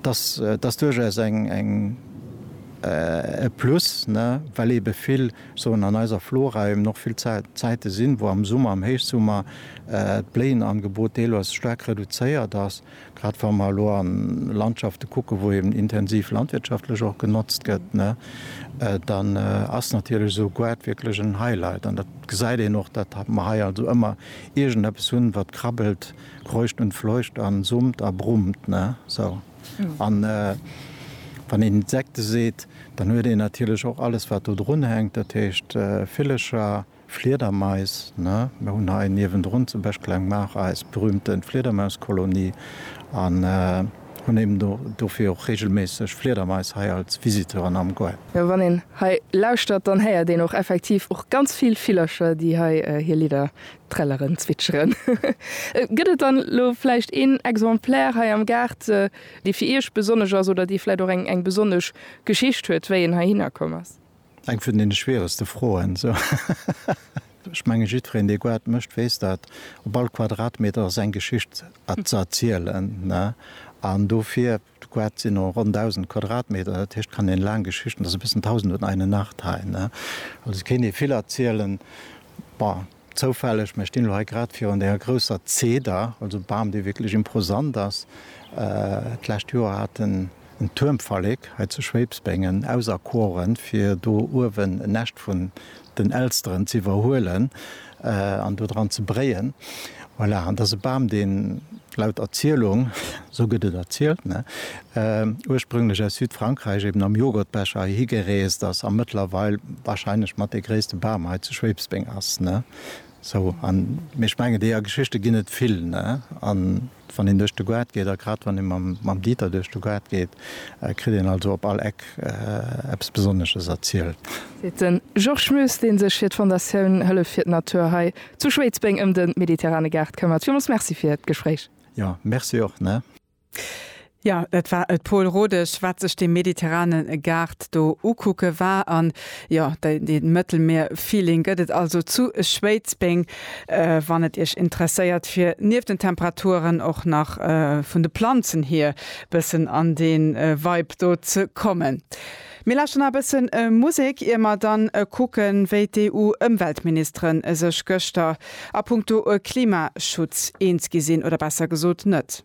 Dass ass duerchaus e Plus, well eebe vill Zonen an eiser Flora eben och vill Zäite sinn, wou am Summer, am Héichsummer d'Bléienangebot deelweis staark reduzéiert ass. Grad wa mer elo an Landschafte kucken, wou eben intensiv landwirtschaftlech och genotzt gëtt, dann ass natierlech esou e Goart wierklech en Highlight. An dat gesäit een och, datt mer hei also ëmmer iergendeppes hunn, wat krabbelt. Kreucht und fleucht an summt a brummt, ne? Sou. An wann een Insekte seet, dann huet een natierlech och alles, wat do drun hänkt, dat heescht Villecher, Fliedermais, ne? Mir hunn hei niewendrun zum Beispill eng Maach, eis berühmte Fliedermauskolonie, an hunn eben dofir och regelméisseg Fliedermais hei als Visiteuren am Goart. Jo, wann een hei lauschtert, dann héiert een och effektiv och ganz vill Villercher, déi hei hir Lidder Trelleren zwitscheren. Gëtt et dann elo vläicht een Exemplaire hei am Gaart, dee fir Iech besonnesch ass oder dee vläicht och eng besonnesch Geschicht huet, wéi en heihinner komm ass? Eng vun deene schwieregste Froen. Ech menge jiddwereen, dee Goart mécht, weess dat. Op all Quadratmeter ass eng Geschicht ze erzielen. An dofir. D'Quad sinn no ronn 1.000 Quadratmeter, dat heescht, kann een laang Geschichten, ass e bëssen Tausend und eine Nacht hei, ne? Also kéint ee vill erzielen. Bon, zoufälleg, mä ech stinn elo hei grad virun denger grousser Zeder, also Bam, dee wierklech imposant ass. D'lescht Joer hat en en Tuermverleg hei zu Schwéibsbengen auserkoren, fir do uewen en Näscht vun den Elsteren z'iwwerhuelen an do dran ze bréien. Voilà, an dat ass e Bam, deen laut Erzielung, esou gëtt et erzielt, ne, ursprünglech aus Südfrankräich eben am Joghurtbecher heihi gereest ass a mëttlerweil wahrscheinlech mat dee gréisste Bam hei zu Schwebsbeng ass, ne. Sou, an ech mengen, déi a Geschichte ginn et vill, ne, an Wann een duerch de Goart geet, a grad wann ee mam Dieter duerch de Goart geet, kritt een also op all Eck eppes Besonnesches erzielt. Seet de Georges Moes, dee sech fir d'Fondatioun Hëllef fir d'Natur hei zu Schwéidsbeng ëm de mediterrane Gaart këmmert. Villmools Merci fir d'Gespréich. Jo, Merci och, ne. Jo, et war et Paul Rodesch, wat sech dee mediterrane Gaart do ukucke war. An jo, dee Mëttelmier-Feeling gëtt et also zu Schwéidsbeng. Wann et Iech interesséiert, fir nieft den Temperaturen och nach vun de Planzen hier bëssen an dee Vibe do ze kommen. Mir lauschteren nach e bësse Musek, ier mer dann kucken, wéi d'EU-Ëmweltministere sech gëschter a punkto Klimaschutz eens gi sinn, oder besser gesot net.